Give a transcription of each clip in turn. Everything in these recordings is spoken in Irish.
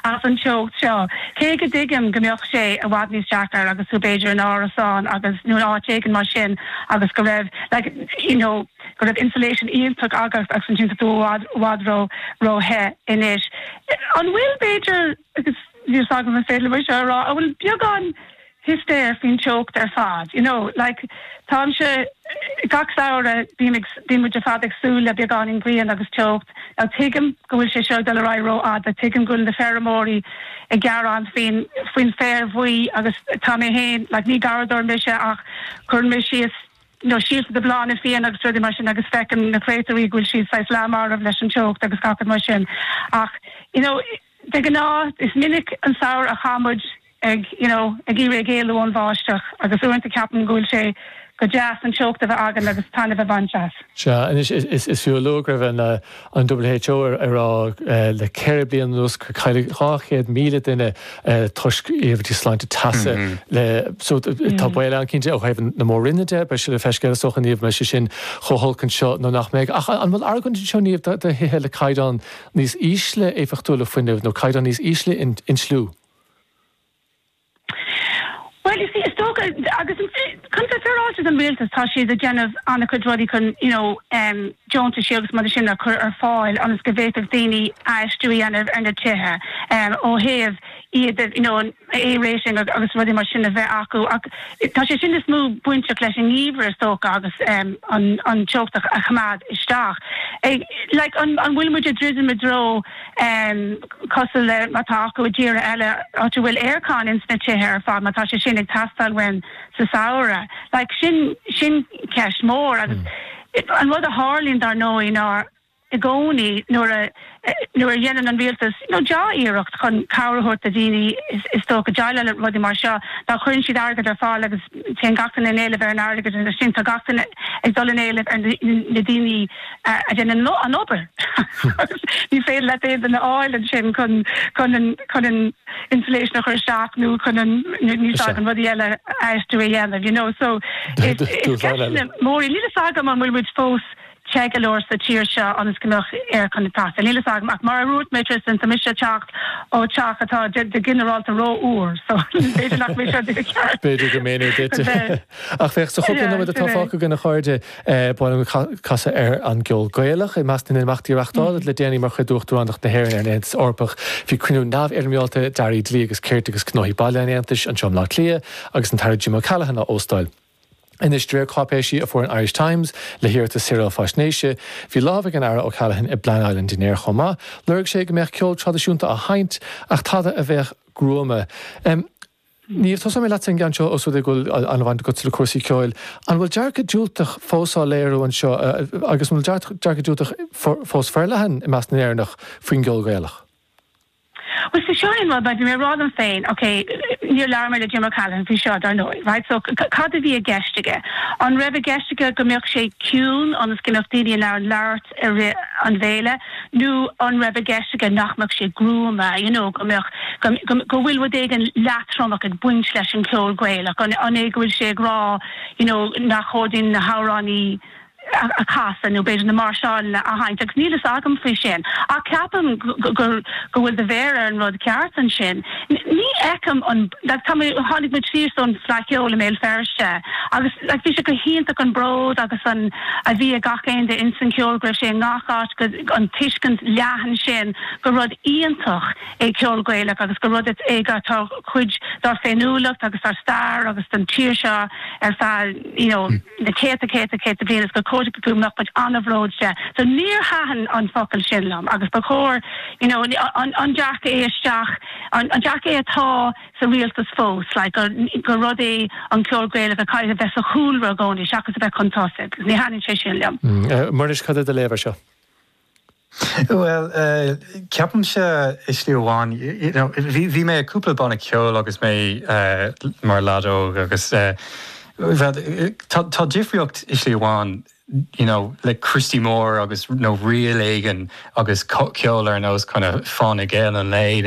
as an teocht seo. Cé go dtuigim go mbeadh sé i bhfad níos deacra agus tú b'fhéidir in árasán agus, nó in áit éigin mar sin agus go raibh like, you know, go raibh insulation iontach agat agus ansin tá tú i bhfad, i bhfad ró, ró the anois. An bhfuil b'fhéidir, agus níl a fhios agam an féidir liom é seo a rá, an bhfuil beagán histéire faoin teocht ar fad, you know like táimse, gach samhradh bím ag, bíonn muid ar fad ag súil le beagáinín grian agus teocht, now tuigim go bhfuil sé seo ag dul ar aghaidh ró-fhada, tuigim go bhfuil na feirmeoirí ag gearán faoin, faoin bhféar buí agus tá mé féin, like ní garraíodóir mise ach cuireann mé síos, you know síolta do bhláthanna fiáine agus rudaí mar sin agus feicim na créatúirí go bhfuil siad saghas leath marbh leis an teocht agus gach rud mar sin ach, you know. De ghnáth, is minic an samhradh a chaith muid ag, you know, ag iarraidh éalú ón bháisteach agus uaireanta ceapaim go bhfuil sé go deas an teocht a bheith againn agus taitneamh a bhaint as. Sea, anois, is fiú a lua go raibh an WHO ag rá le ceithre bliana anuas gur cailleadh 200,000 duine toisc iarmhairtí sláinte teasa leo, so, tá baol ann cinnte ó thaobh na Mór-roinne de, beidh sé le feiceáil is dócha, Niamh, an mbeidh sé sin chomh holc anseo nó nach mbeidh. Ach an bhfuil argóint anseo, Niamh, do thithe le caighdeán níos ísle éifeachtúlacht fuinnimh nó caighdeán níos ísle inslithe? Bhuel, you see, is dócha, agus chun a bheith féaráilte don rialtas, tá siad ag déanamh an-chuid rudaí chun, you know, deontaisí agus rudaí mar sin a chur ar fáil ionas go bhféadfadh daoine aistíú a dhéanamh ar na tithe ó thaobh, iad you know an A rating agus rudaí mar sin a bheith acu ach tá sé sin is mó bainteach leis an ngeimhreadh is dócha agus em an an teocht a choimeád isteach. Like an an bhfuil muid ag druidim i dtreo em cosúil le mar tá acu i dtíortha eile áit a bhfuil aircon ins na tithe ar fad má tá sé sin ag teastáil uainn sa samhradh. Like sin sin ceist mór agus an rud a tharlaíonn dar ndóigh ná i gcónaí nuair a nuair a dhéanann an rialtas dea-iarracht chun cabhair a thabhairt do daoine is dócha déileáil le rudaí mar seo ná cuireann siad airgead ar fáil agus téann gach duine in éileamh ar an airgead agus ansin tá gach duine ag dul in éileamh ar na daoine a déanann an obair agus ní féidir leat aon duine a fháil ansin chun chun an chun an insulation a chur isteach nó chun an na saghas rudaí eile aistriú a dhéanamh you know so is is ceist mór í níl a fhios agam an bhfuil muid fós te go leor sa tír seo ionas go mbeadh aircon ag teacht. Níl a fhios agam ach mar a dhúirt mé Tristan tá mise ag teacht ó teach atá go ginearálta ró fhuar so b'fhéidir nach mise a bhí i ceart. B'fhéidir gur méanar duit. Ach féach, sa chúpla nóiméad atá fágtha againn a chairde, bainimis casadh as an gceol Gaelach. I measc na n-imeachtaí a reachtáladh le déanaí mar chuid d'Uachtaránacht na hÉireann ar an Aontas Eorpach bhí cruinniú neamhfhoirméálta d'Airí Dlí agus Cirt agus Gnóthaí Baile an Aontais anseo i mBleá Cliath agus an tAire Jim O'Callaghan á óstáil. Anois de réir cáipéisí a fuair an Irish Times le hiarratas saoráil faisnéise, bhí lámh ag an Aire O'Callaghan i bpleanáil an dinnéir chomh maith. Lorg sé go mbeadh ceol traidisiúnta á sheinnt, ach tada a bheadh gruama. Niamh, tosóidh mé leatsa ar an gceann seo os rud é go bhfuil an-bhaint agatsa le cúrsaí ceoil. An bhfuil dearcadh diúltach fós á léiriú anseo agus an bhfuil dearcadh diúltach fós forleathan i measc na nÉireannach faoin gceol Gaelach? Bhuel, so seo é an rud, right, bhí mé ag rá liom féin, ok, níor labhair mé le Jim O'Callaghan faoi seo, dar ndóigh, right, so cad a bhí i gceist aige? An raibh i gceist aige go mbeadh sé ciúin ionas go mbeadh daoine in ann labhairt i rith an bhéile nó an raibh i gceist aige nach mbeadh sé gruama, you know, go mbeadh, go, go bhfuil rud éigin leatromach ag baint leis an cheol Gaelach, an, an é go bhfuil sé ag rá, you know, nach chóir dúinn na hamhráin a. a chasadh nó b'fhéidir na máirseáileanna a sheinnt agus níl a fhios agam faoi sin ach ceapaim go bhfuil do mhéar ar an rud ceart ansin. Ní fheicim an, like tá mé, tháinig muid síos ón bhFleadh Cheoil i mBéal Feirste agus like bhí sé go hiontach an bród agus an, a bhí ag gach aon duine insan cheol go raibh sé i ngach áit, an tuiscint leathan sin gur rud iontach. é ceol Gaelach agus gur rud é go atá cuid dár féiniúlacht agus dár stair agus don tír seo ar feadh you know na céadta céadta céad bliain is gur cóir go mbeadh muid an-bhródúil de. So níor thaitin an focal sin liom agus ba chóir you know an an dearcadh é isteach an an dearcadh é atá sa rialtas fós like gur gur rud é an ceol Gaelach a chaithfidh a bheith sa chúlra gcónaí seachas a bheith chun tosaigh. Ní thaitníonn sé sin liom. Muiris, cad é do léamh ar seo? Bhuel, ceapaimse i slí amháin, y'know, bhí mé i cúpla banna ceoil agus mé mar leaid óg agus tá difríocht i slí amháin, y'know, le Christy Moore agus, nó ríl éigin agus ceol ar nós kinda Fáinne Geal an Lae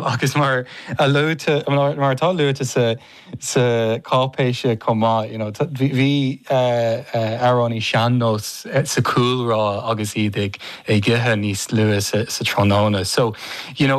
agus mar atá luaite sa. sa cháipéis chomh maith, you know, bhí amhránaí sean-nós sa chúlra agus iad ag ithe níos luaithe sa tráthnóna, so, you know.